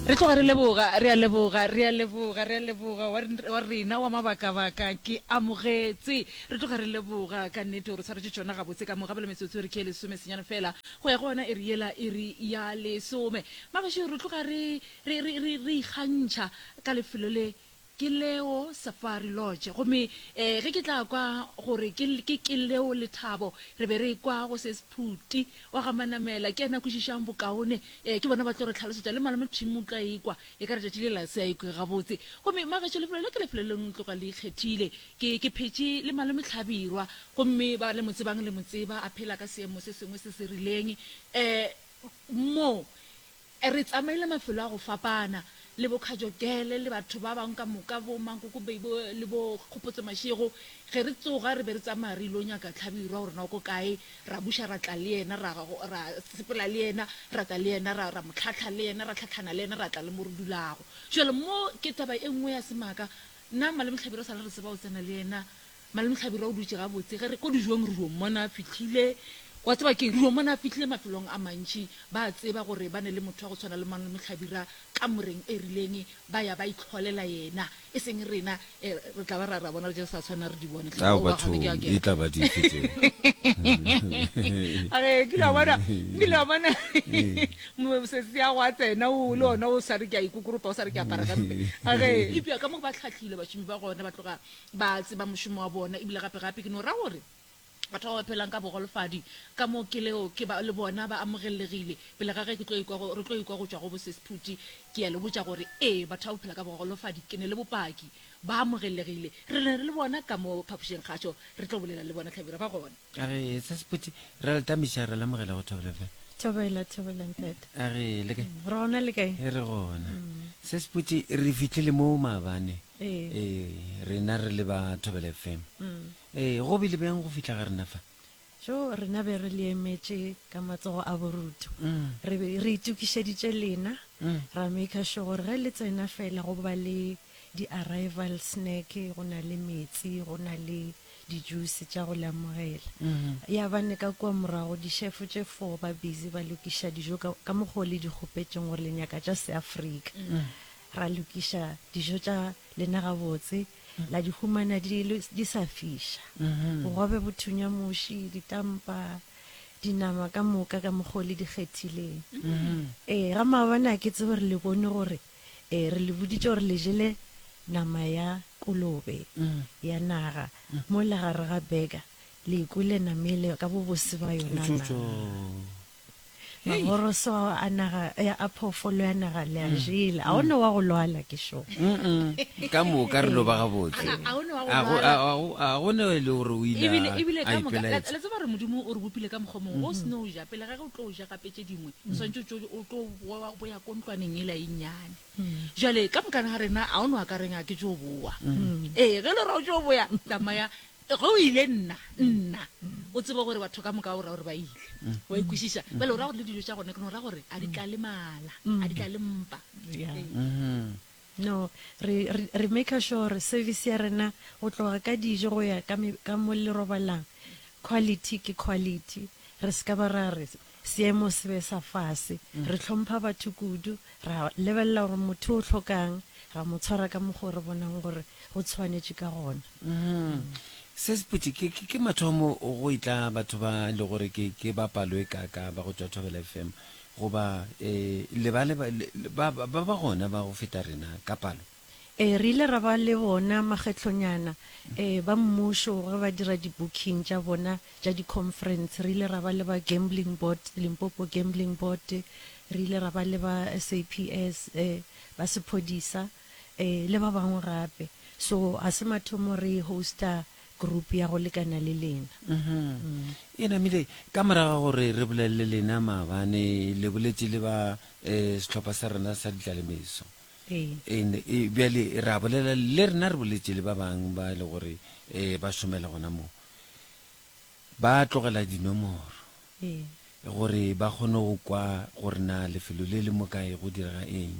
re tloga re leboga re a leboga re a leboga re a leboga wa rena wa mabakabaka ke amogetse re tloga re leboga ka nnete gore tshwaretse tsona gabotse ka mogabelo metsotso e re ke e lesome senyane fela go ya go ona e re yela e re ya lesome mabašo re tloga re ikgantšha ka lefelo le Ke Leo Safari Lodge. Gomme e, ge ke tla kwa gore ke, ke, ke Leo Lethabo, re be re ekwa go se Sphuti wa ga Manamela, ke yena a kwešišang bokaone. E, ke bona ba tlo re tlhalosetša, le Malome Phimo o tlo a ekwa, e ka re tšatši lela se a ekwego gabotse. Gomme, magaešo, lefelo le ke lefelo le no tloga le ikgethile. Ke, ke phetše le Malome Hlabirwa, gomme ba le mo tsebang le mo tseba, a phela ka seemo se sengwe se se rileng. E, mo, Re tsamaile mafelo a go fapana, le bo Kajogele, le batho ba bangwe ka moka, bo Mankoko Bay, bo, le bo Kgopotse Mashego. Ge re tsoga, re be re tsamaya re il'o nyaka Tlhabirwa gore na o ko kae, ra buša ra tla le yena, ra, ra sepela le yena, ra tla le yena, ra, ra mo tlhahla le yena, ra tlhahlana le yena, ra tla le mo re dulago. Bjale mo ke taba e nngwe ya semaka, na Malome Tlhabirwa sa le re tseba o tsena le yena Malome Hlabirwa o dutše gabotse. Ge re ko dijong re dio mmona a fihlile. Wa tseba keng? Re dio mmona a fihlile mafelong a mantši. Ba a tseba gore ba ne le motho wa go tshwana le Malome Hlabirwa kamoreng e rileng, ba ya ba itlholela yena. E seng rena e, re tla ba ra, ra bona re je re sa tshwanela re di bone. Hle, Ao, aowa, ga se ke a bathong, kena. e tla ba dife tseo? A re, kile wa bona, kile wa bona mo- sesi ya go a tsena o le ona o sa re ke a ikokoropa, o sa re ke a apara gampe. A re, Eupša ka mo ba hlahlilwe bašomi ba gona ba tloga Ba a tseba mošomo wa bona, ebile gape-gape ke no ra gore batho ba ba phelang ka bogolofadi ka mo ke leo ke ba, le bona ba amogellegile. Pele ga ge ke tlo ikwa go, re tlo ikwa go tšwa go Bosesi Phuti, ke a le botša gore, ee, batho ba ba phela ka bogolofadi ke ne le bopaki, ba amogellegile. Re ne re le bona ka mo phapošengkgašo, re tlo bolela le bona hlabirwa, ba gona. A re, Sesi Phuti, re a le tamiša, re lemogela go thobela fela. Thobela, thobela, ntate. A re, Le kae? Re gona, le kae? Re gona. Sesi Phuti, re fihlile mo maabane. Ee, rena re le ba Thobele FM. Ee, go bile bjang go fihla ga rena fa? Jo, rena be re le emetše ka matsogo a borutu. Re be re itokišeditše lena, ra maker sure gore ge le tsena fela go ba le di-arrival snack, go na le metsi, go na le di-juice tša go le amogela. Ya ba ne ka kua morago di-chef tše four ba busy ba lokiša dijo ka, ka mokgo le di kgopetšeng gore le nyaka tša Seafrika. Ra lokiša dijo tša lena gabotse, la di humana di, di sa fiša. Bogobe bo thunya muši, ditampa, dinama ka moka ka mokgo le di kgethileng. Ee, ga maabane a ke tsebe gore le bone gore e, re le boditše gore le jele nama ya kolobe ya naga mola gare ga beka, le ikwele namele ka bobose ba yona na? Maboroso ao a naga ya a phoofolo ya naga le a mm. jele. A o ne wa go lwala ke šo. Ka moka re loba gabotse. A o ne wa go lwala. A go ne e le gore o ile a ipelaetsa. Ebile ebile ka moka la tseba gore Modimo o re bopile ka mokgwa mongwe o se no ja pele ga ge o tlo ja gape tše dingwe o swantse o tlo boya ko ntlwaneng e la e nnyane. Jale ka moka ga rena a o ne wa ka reng a ke tšo boa. Ee ge le ra o tšo boya tsamaya Ge o ile, nna, nna, o tseba gore batho ka moka o ra gore ba ile. O a e kwešiša? Bjale o ra gore le dijo tša gona ke no ra gore a di tla le mala, a di tla le mpa. Ee. No, re, re, re maker sure gore service ya rena go tloga ka dijo go ya ka me, ka mo le robalang, quality ke quality. Re se ka ba ra re, Seemo se be sa fase. Re hlompha batho kudu, ra lebelela gore motho o hloka'ng, ra mo tshwara ka mokgwa o re bonang gore go tshwanetše ka gona. Se se putše, ke mathomo go etla batho ba e le gore ke ba palo e kaakaa ba go tšwa Thobela FM goba le ba ba gona ba go feta rena ka palo? Ee, re ile ra ba le bona makgetlonyana ee ba mmušo ge ba dira di-booking tša bona tša di-conference. Re ile ra ba le ba Gambling Board, Limpopo Gambling Board, re ile ra ba le ba SAPS, ee, ba sephodisa, ee, le ba bangwe gape. So ga se mathomo re host-a group ya go lekana le lena. Eena Mile, ka morago ga gore re bolelele lena maabane, le boletše le ba sehlopha sa rena sa ditlalemeso. Ee. Bjale re a bolela le rena re boletše le ba bang ba e le gore um ba šomela gona moo, ba tlogela dinomoro gore ba kgone go kwa gore na lefelo le le mo kae go direga eng.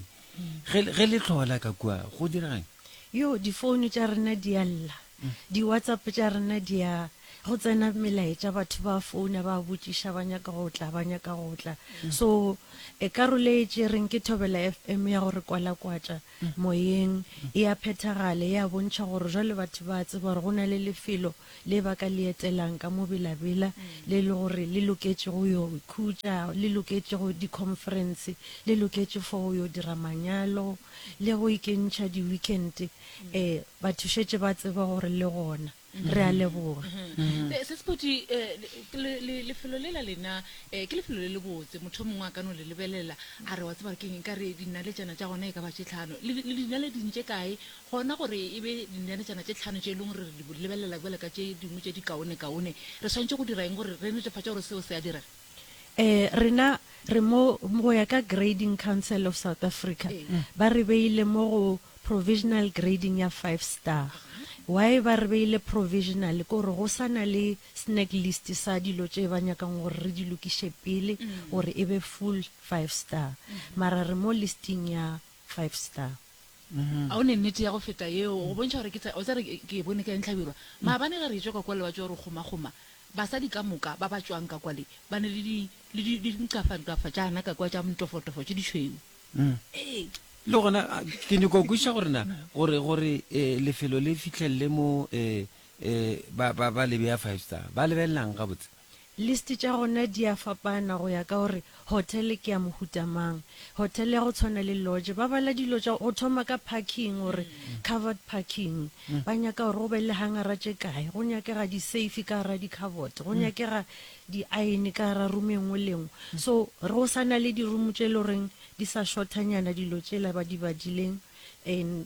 Ge le tlhola ka kua go diregang? Yoo, difounu tša rena di a lla. Di WhatsApp tša rena di a go tsena melaetša, batho ba founa ba botšiša ba nyaka go tla, ba nyaka go tla. So e karolo e tšereng ke Thobela FM ya go re kwalakwatša moyeng, e a phethagale, e a bontšha gore jwale batho ba a tseba gore go na le lefelo le ba ka le etelang ka mo belabela, le e le gore le loketše go yo ikhutša, le loketše go di-conference, le loketše for go yo dira manyalo le go ikentšha di-weekend-e Ee, batho šetše ba tseba gore le gona. Re a leboga. Mm-hmm. Eh, Sesipoti, eh, lefelo le la lena eh, ke lefelo le le botse. Motho mongwe a ka no le lebelela a re wa tseba ke eng ka re dinaletšana tša gona e ka ba tše tlhano. Le dinale di ntše kae gona gore e be dinaletšana tše tlhano tše e leng gore re di lebelela jale ka tše dingwe tše di kaone-kaone. Re tshwanetse go dira eng gore re netefatše gore seo se a direga? Ee, rena re mo, go ya ka Grading Council of South Africa, ba re beile mo go provisional grading ya five star. Why ba re beile provisional, ke gore go sa na le snag list sa dilo tše ba nyakang gore re di lokiše pele gore e be full five star. Mara re mo listing ya five star. A o ne nnete ya go feta yeo, go bontšha gore ke tsa, o tla re ke e bone ka entlhabirwa. Maabane ge re etšwa ka kwa le ba tšwa go re kgomakgoma, basadi ka moka ba ba tšwang ka kwa le, ba ne le di, le di, le dinkafantkafa tšana ka kwa tša montofotofo tše ditšhweu. Ee. Le gona ke nyoko go kwešiša gore na, gore, gore lefelo le fihlelele mo, ba, ba, ba le bea five star, ba lebelela'ng gabotse? List tša gona di a fapana go ya ka gore hotel ke ya mohuta mang. Hotel ya go tshwana le lodge ba bala dilo tša go thoma ka parking gore covered parking, ba nyaka gore go be le hangara tše kae, go nyakega di safe ka gara di cupboard, go nyakega di iron ka gara room e nngwe le nngwe. So re go sa na le di room tše e le goreng di sa shortanyana dilo tšela ba di badileng and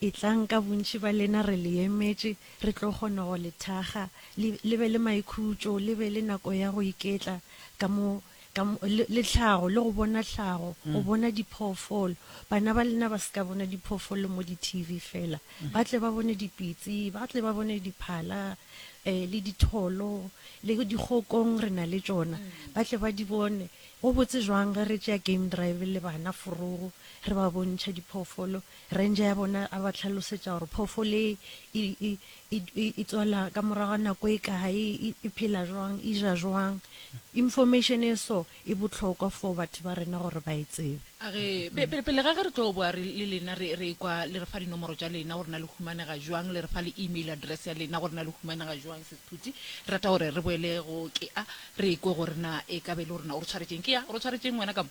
Etlang ka bontši ba lena, re le emetše, re tlo kgona go le thakga, le, le be le maikhutšo, le be le nako ya go iketla ka mo, ka mo, le, le tlhago, le go bona tlhago, go bona diphoofolo. Bana ba lena ba se ka bona diphoofolo mo di-TV feela. Ba tle ba bone dipitsi, ba tle ba bone diphala, um le ditholo, le dikgokong re na le tšona, ba tle ba di bone. Go botse jwang ge re tšea game drive le bana forogo, re ba bontšha diphoofolo, Ranger ya bona a ba hlalosetša gore phoofolo e, e, e, e, e, e tswala ka morago ga nako e kae, e, e phela jwang, e ja jwang. Information e so e bohlokwa for batho ba rena gore ba e tsebe. A re, Pe, pe, pele ga ge re tlo boa re, le lena re, re ekwa le re fa dinomoro tša lena gore na le humanega jwang, le re fa le email address ya lena gore na le humanega jwang, Sis Phuti. Re rata gore re boele go, ke a, re ekwe gore na e ka be e le gore na o re tshwaretšeng. Ke a, o re tshwaretšeng wena ka mo?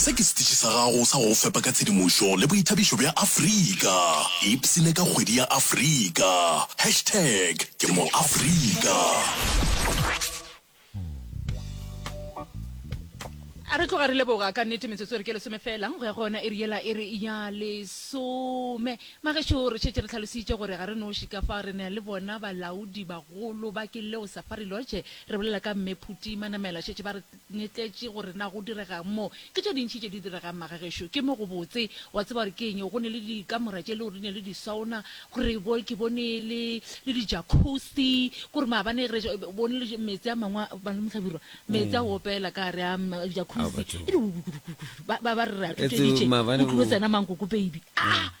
Se ke setiši sa gago sa go go fepa ka tshedimošo le boithabišo bja Afrika. Ipsine ka kgwedi ya Afrika. Hashtag Ke MoAfrika. A re tloga re leboga ka nnete metsotso re ke lesome fela go ya go yona iri yela e re ya lesome magešo re šetše re tlhalositše gore ga re noši ka fa re ne le bona balaodi bagolo ba ke leo safari lodge re bolela ka mme phuti manamela šetše ba re Netletše gore na go direga'ng mo. Ke tše dintši tše di direga'ng magagešo. Ke mo go botse. Wa tseba gore ke eng? Go ne le dikamora tše e lego di ne le di-sauna, gore bo, ke bone le, le di-jacuzzi, kore maabane ge re bone le meetse a mangwe a, Malome Hlabirwa, meetse a go opela ka gare a jacuzzi, e di, ba, ba, ba re re a thotšeditše, o tlilo tsena mankoko baby. Ah!